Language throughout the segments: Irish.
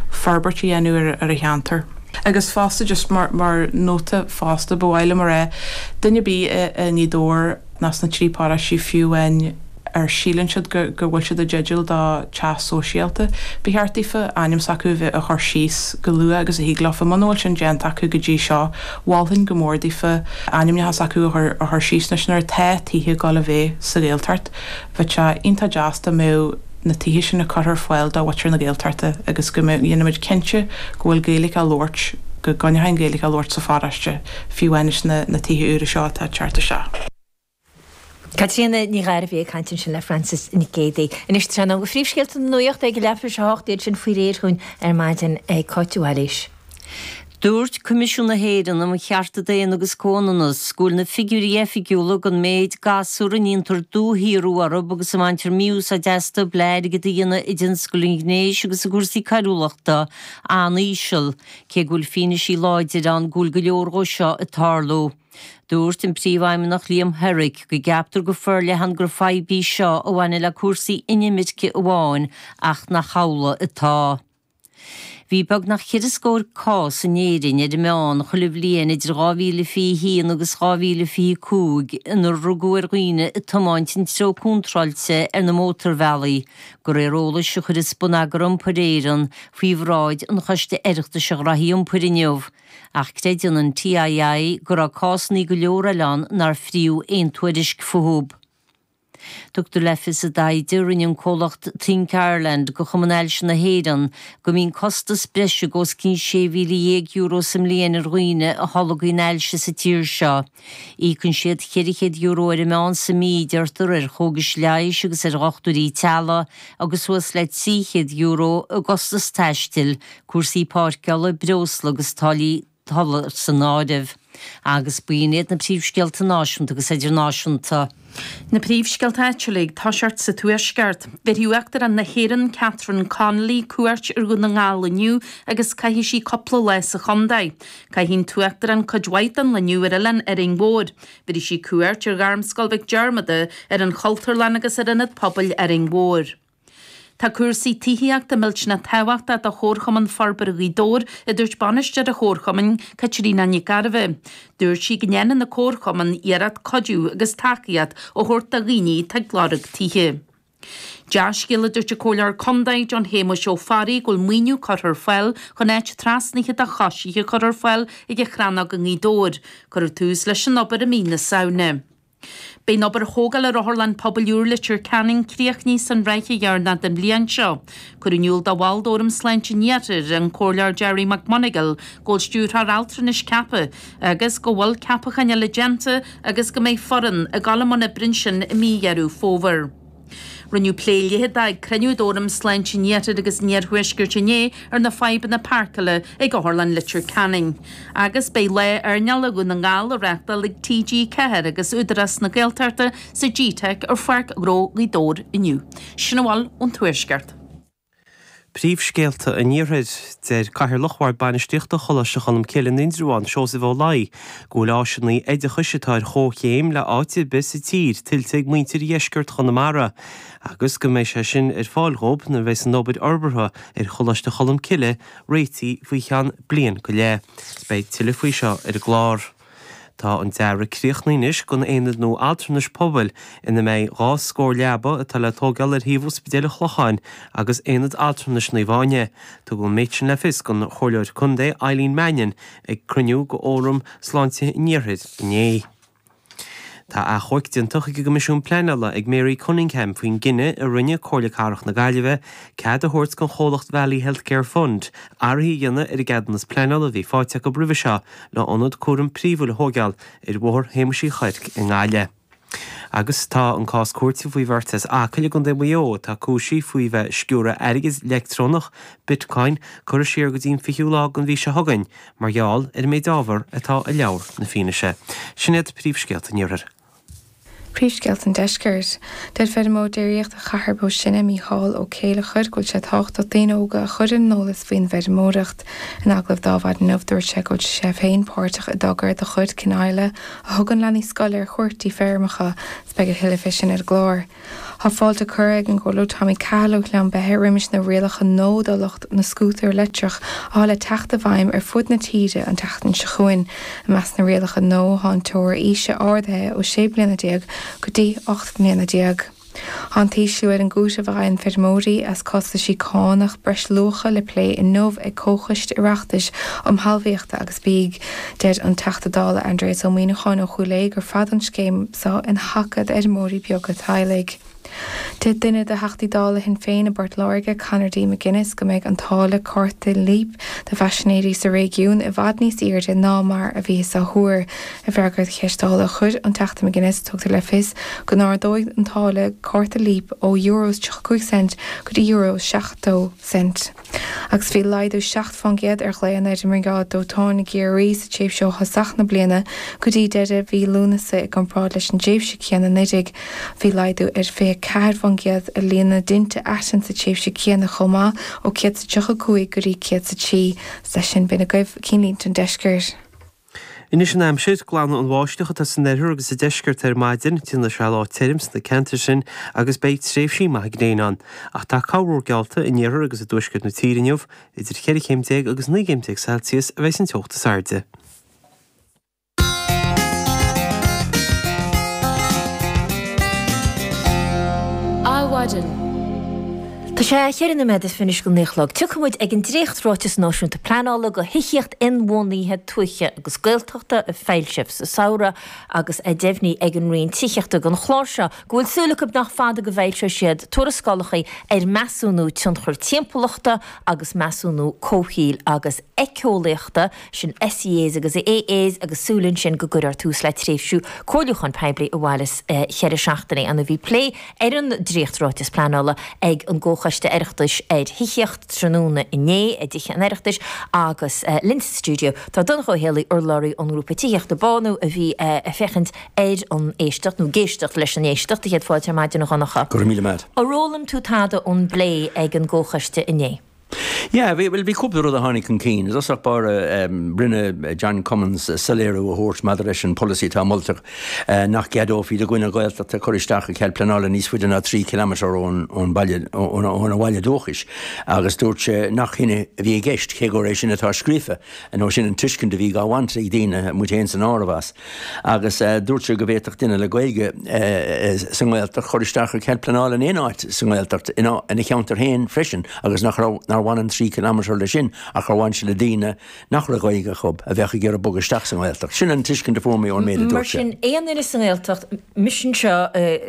forbairt a dhéanamh ar an cheantar. Agus fosta just mar nóta fosta, ba mhaith liom a rá, duine ar bith i nGaoth Dobhair ná sna trí paráistí fiú amháin a síleann siad go bhfuil siad i dteideal do teach sóisialta, ba cheart daofa ainm s'acu a chur síos go luath agus a thig leofa. Muna bhfuil sin déanta acu go dtí seo, mholfainn go mór daofa ainmneacha s'acu a chur síos anois nuair atá tithe ag dul a bheith sa Ghaeltacht. Bheadh sé iontach deas dá mbeadh. na tithe sin a curtha ar fáil do mhuintir na Gaeltachta agus go mbeadh, dhéanfaimid cinnte go bhfuil Gaeilge á labhairt, go gcoinneofaí an Ghaeilge á labhairt sa pharóiste, fiú amháin sna, na tithe úra seo atá ag teacht isteach. Caitríona Nic Gairbheith ag caint ansin le Frances Nic Géadaigh. Anois sa seomra nuachta príomhscéalta na nuachta ag a leath tar éis a hocht, iad sin faoi réir dúinn ar maidin ag Cáit Mhaoilís. Dúirt Coimisiún na hÉireann um Chearta Daonna agus Comhionannas go bhfuil na figiúirí oifigiúla den méid gasúr a ndéantar dúshaorú orthu agus a mbaintear mí-úsáid astu le airgead a dhéanamh i dtionscal an ghnéis agus i gcúrsaí coiriúlachta an-íseal, cé go bhfuil fianaise láidir ann go bhfuil go leor de seo ag tarlú. Dúirt an Príomhfheidhmeannach Liam Herrick go gceaptar go forleathan gur fadhb í seo a bhaineann le cúrsaí inimirce amháin ach nach amhlaidh atá. Bhí beagnach ceithre scór cás in Éirinn ar an meán chuile bhliain idir 2021 agus 2025 inar rugadh ar dhaoine ag tiomáint an treo contráilte ar na mótarbhealaí, de réir eolais a chuireas Bonneagar Iompair Éireann faoi bhráid an Choiste Oireachtais um chúrsaí iompair inniu, ach creideann an TII go raibh cásanna go leor eile ann nár fríothadh aon tuairisc fúthu. Tugtar le fios i dtaighde a rinne an comhlacht Think Ireland do Chumann Ailse na hÉireann go mbíonn costas breise de os cionn €16,000 sa mbliain ar dhaoine a tholgaíonn ailse sa tír seo. Íocann siad €400 ar an meán sa mí, deirtear, ar chógais leighis agus ar dhochtúirí teaghlaigh agus suas le €300 i gcostas taistil, cúrsaí páirceála, breosla agus táillí ola san áireamh. Agus b'in iad na príomhscéalta náisiúnta agus idirnáisiúnta. Na príomhscéalta áitiúla ag toiseacht sa Tuaisceart. Bhéarfaidh Uachtarán na hÉireann Catherine Connolly cuairt ar Dhún na nGall inniu agus caithfidh sí cúpla lá sa chontae. Caithfidh an tUachtarán cuid mhaith den lá inniu ar Oileán Árainn Mhóir. Bhéarfaidh sí cuairt ar Ghairmscoil Mhic Diarmada, ar an Chultúrlann agus ar Ionad Pobail Árainn Mhóir. Tá cúrsaí tithíochta millteanach tábhachtach do Chomharchumann Forbartha Ghaoth Dobhair, a dúirt Bainisteoir an Chomharchumainn, Caitríona Nic Gairbheith. Dúirt sí go ndéanann an Comharchumann iarracht cuidiú agus tacaíocht a thabhairt do dhaoine atá ag lorg tithe. Dea-scéal, a dúirt an Comhairleoir Contae, John Shéamuis Ó Fearraigh, go bhfuil maoiniú curtha ar fáil chun áit trasnaithe do choisithe a chur ar fáil ag an Chrannóg i nGaoth Dobhair. Cuireadh tús leis an obair i mí na Samhna. Beidh obair thógála ar Otharlann Pobail úr Leitir Ceanainn críochnaithe san ráithe dheireanach den bhliain seo. Cuireadh in iúl do bhall d'Fhóram Sláinte an Iarthair, an Comhairleoir Gerry McMonagle go bhfuil Stiúrthóir Altranais ceaptha agus go bhfuil ceapacháin eile déanta agus go mbeidh foireann ag dul i mbun oibre ansin i mí Dheireadh Fómhair. Rinneadh plé leitheadach ag cruinniú d'Fhóram Sláinte an Iarthair agus an Iarthuaiscirt inné ar na fadhbanna páirceála ag Otharlann Leitir Ceanainn. Agus beidh Lá Earnála Dhún na nGall á reáchtáil ag TG4 agus Údarás na Gaeltachta sa G-Teic ar Pháirc Ghnó Ghaoth Dobhair inniu. Sin a bhfuil ón Tuaisceart. Príomhscéalta an Iarthair. Deir Cathaoirleach Bhord Bainistíochta Choláiste Cholmcille, Indreabhán, Seosamh Ó Laoi, go bhfuil áiseanna oideachais atá ar chomhchéim le háit ar bith sa tír tuillte ag muintir dheisceart Chonamara agus go mbeidh sé sin ar fáil dhóibh nuair a bheidh an obair fhorbartha ar Choláiste Cholmcille réitithe faoi cheann bliain go leith. Beidh tuilleadh faoi seo ar an gclár. Tá an dearadh críochnaithe anois don Aonad nua Altranais Pobail ina mbeidh dhá scór leaba atá le tógáil ar shuíomh Ospidéal an Chlocháin agus Aonad Altranais Naomh Áine. Tugadh an méid sin le fios don Chomhairleoir Contae Eileen Mannion ag cruinniú de Fhóram Sláinte an Iarthair inné. Tá achomharc déanta chuig an gCoimisiún Pleanála ag Mary Cunningham faoin gcinneadh a rinne Comhairle Cathrach na Gaillimhe cead a thabhairt don chomhlacht Valley Healthcare Fund athruithe a dhéanamh ar an gceadúnas pleanála a bhí faighte acu roimhe seo le hionad cúraim príomhúil a thógáil ar Bhóthar Shéamuis Uí Chuirc i nGaillimh. Agus tá an cás cúirte faoi bheirt as Acaill i gContae Mhaigh Eo, atá cúisithe faoi bheith ag sciúradh airgid leictreonach, Bitcoin, curtha siar go dtí an fichiú lá den mhí seo chugainn mar gheall ar an méid ábhar atá i leabhar na fianaise. Sin iad príomhscéalta an Iarthair. Príomhscéalta an Deiscirt. Deir feirmeoir déiríochta ó Chathair Bó Sine, Mícheál Ó Céilleachair, go bhfuil sé tábhachtach daoine óga a chur ar an eolas faoin bhfeirmeoireacht. In agallamh ar maidin inniu dúirt sé go bhfuil sé féin páirteach i dtogra de chuid Kinisla a thugann leanaí scoile ar chuairt dtí feirmeacha agus beidh a thuilleadh fé sin ar an gclár. Thá fáilte curtha ag an gComhairleoir Tommy Cahill ó Ghleann Beithe roimis na rialacha nua do lucht na scútar leictreach athá le teacht i bhfeidhm ar fud na tíre an tseachtain seo chugainn. I measc na rialacha nua thá an teora aoise ardaithe ó sé mbliana déag go dtí ocht mbliana déag. Thá an t-ísliú ar an gcúiteamh a fhaigheann feirmeoirí as costaisí cánach breisluacha le plé inniu ag Comhchoiste Oireachtais um Thalmhaíocht agus. Bia. Deir an Teachta Dála Aindreas Ó Muíneacháin ó Chúil Aodha gur fada an scéim so ina taca d'fheirmeoirí beaga teaghlaigh. Deir duine de Theachtaí Dála Shinn Féin i bPort Láirge, Conor D. McGuinness go mbeidh an táille cárta Leap do phaisinéirí sa réigiún i bhfad níos aírde ná mar a bhíothas á thuar. I bhfreagra do cheist Dála a chuir an Teachta McGuinness, tugtar le fios go n-ardóidh an táille cárta Leap ó euro is 35 cent go dtí euro is 70 cent. agus bhí laghdú 7 fán gcéad ar ghlaonna ar an mBriogáid Dóiteáin i gCiarraí sa tréimhse ó thosach na bliana go dtí deireadh mhí Lúnasa i gcomparáid leis an dtréimhse céanna 19 Bhí laghdú ar 24 fán gcéad i líon na dtinte aitinn sa tréimhse céanna chomh maith ó 135 go dtí 103 Is leis sin b'in agaibh cinnlínte ón deisceart. Anois an aimsir, glanfaidh an bháisteach atá san oirthear agus sa deisceart ar maidin, déanfaidh sé lá tirim sna ceantair sin agus beidh tréimhsí maithe gréine ann. Ach tá corrmhúr geallta in iarthar agus i dtuaisceart na tíre inniu, idir 14 chéim agus 19 céim Celsius a bheidh san teocht is airde. Adhmhaidin. Tá sé a ceithre nóiméad is fiche anois go naoi a chlog. Tiocfaidh muid ag an dréacht Ráiteas Náisiúnta Pleanála do Thithíocht Inbhuanaithe Tuaithe agus Gaeltachta a foilsíodh sa samhradh agus tá deimhnithe ag an Roinn Tithíochta don chlár seo go bhfuil súil acu nach fada go bhfoilseoidh siad tuarascálacha ar Mheasúnú Tionchar Timpeallachta agus Measúnú Comhshaoil agus Éiceolaíochta sin SEAs agus AAs agus súil ansin go gcuirfear tús le tréimhse comhairliúcháin poiblí a mhairfeas cheithre seachtainí anna bhí plé ar an dréacht ráiteas pleanála ag an gComhchoiste Oireachtais ar Thithíocht tráthnóna inné i dTithe an Oireachtais agus linn sa stiúideo tá Donncha Ó hÉallaithe urlabhraí ón ngrúpa tithíochta BÁNÚ a bhí ag féachaint ar an éisteacht nó ag éisteacht leis an éisteacht céad fáilte ar maidin a Dhonncha. Go raibh míle maith agat. Ar fhoghlaim tú tada ón bplé ag an gComhchoiste inné. Yeah, bhí, bhuel bhí cúpla rud a tháinig chun cinn. I dtosach báire, em, rinne John Cummins soiléiriú a thabhairt maidir leis an pholasaí atá molta, eh, nach gceadófaí do dhuine Gaeltachta cur isteach ar chead pleanála níos faide ná trí chiliméadar ón, ón bhaile, ón, óna bhaile dúchais agus dúirt sé nach shin é a bhí i gceist, cé gur é sin atá scríofa, nó sin an tuiscint a bhí á bhaint ag daoine, muid fhéin san áireamh, as. Agus dúirt sé go bhféadfadh duine le Gaeilge sa nGaeltacht cur isteach ar chead pleanála in aon áit sa nGaeltacht, ina cheantar féin freisin, agus nach raibh, nár bhain an trí kilometre leis sin ach gur bhain sé le daoine nach raibh Gaeilge acu, a bheadh ag iarraidh bogadh isteach sa nGaeltacht. Sin an tuiscint a fuair mé ón méid a dúirt sé. Mar sin, aon duine sa nGaeltacht, mise anseo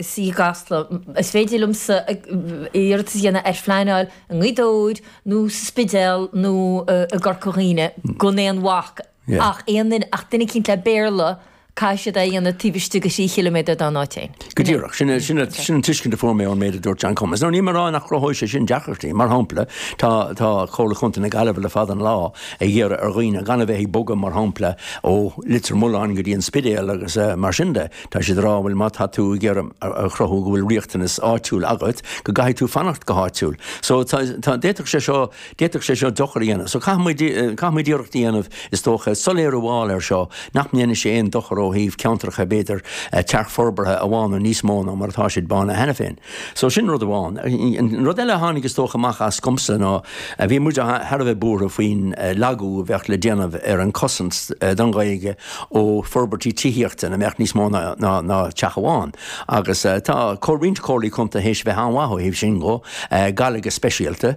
suí i gCasla, is féidir liomsa iarratas a dhéanamh ar phleanáil i nGaoth Dobhair nó sa Spidéal nó i gCorca Dhuibhne gan aon bhac, Ach aon duine, ach duine eicínt le Béarla, caithfidh siad é a dhéanamh taobh istigh de thrí chiliméadar dá n-áit féin. Go díreach. Sin, sin, sin an tuiscint a fuair mé ón méid a dúirt John Cummins. Now níl mé a rá nach gcruthóidh sé sin deacrachtaí. Mar shampla, tá, tá Comhairle Chontae na Gaillimhe le fada an lá ag iarraidh ar dhaoine gan a bheith ag bogadh, mar shampla, ó Leitir Mealláin go dtí an Spidéal agus mar sin de, tá siad a rá, bhuel má tá tú ag iarraidh a chruthú go bhfuil riachtanas áitiúil agat, go gcaithfidh tú fanacht go háitiúil. So, tá, tá, d'fhéadfadh sé seo, D'fhéadfadh sé seo dochar a dhéanamh, so caithfimid iarracht a dhéanamh, is dócha, soiléiriú a fháil air seo nach ndéanfaidh sé aon dochar ó thaobh ceantracha b'fhéidir tearcfhorbartha a bhánú níos mó ná mar atá siad bánaithe cheana féin. So sin rud amháin. An rud eile a tháinig is dócha amach as domsa ná bhí muid thar a bheith buartha faoin lagú a bheadh le déanamh ar an cosaint don Ghaeilge ó forbairtí tithíochta ina mbeadh níos mó ná teach amháin agus tá roinnt comhairlí contae théis bheith an-mhaith ó thaobh sin dhó, Gaillimh go speisialta.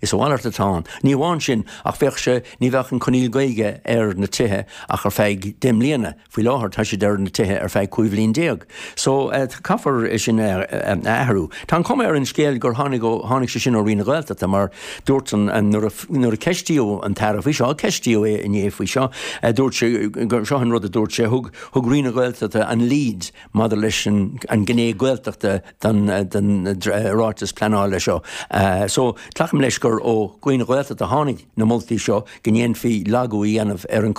Is a mhalairt atá ann. Ní amháin sin, ach bheadh sé, ní bheadh an coinníoll Gaeilge ar na tithe ach ar feadh deich mbliana, faoi láthair tá siad ar na tithe ar feadh cúig bhliain déag. So, caithfear é sin a athrú. Tá an cuma ar an scéal gur tháinig ó, tháinig sé sin ó Roinn na Gaeltachta mar dúirt an, nuair a, nuair a ceistíodh an tAire faoi seo, ceistíodh é inné faoi seo, dúirt sé, seo an rud a dúirt sé, thug, thug Roinn na Gaeltachta an lead, Maidir leis an gné Gaeltachta den ráiteas pleanála seo so, glacaim leis gur ó Roinn na Gaeltachta a tháinig na moltaí seo go ndéanfaí lagú a dhéanamh ar an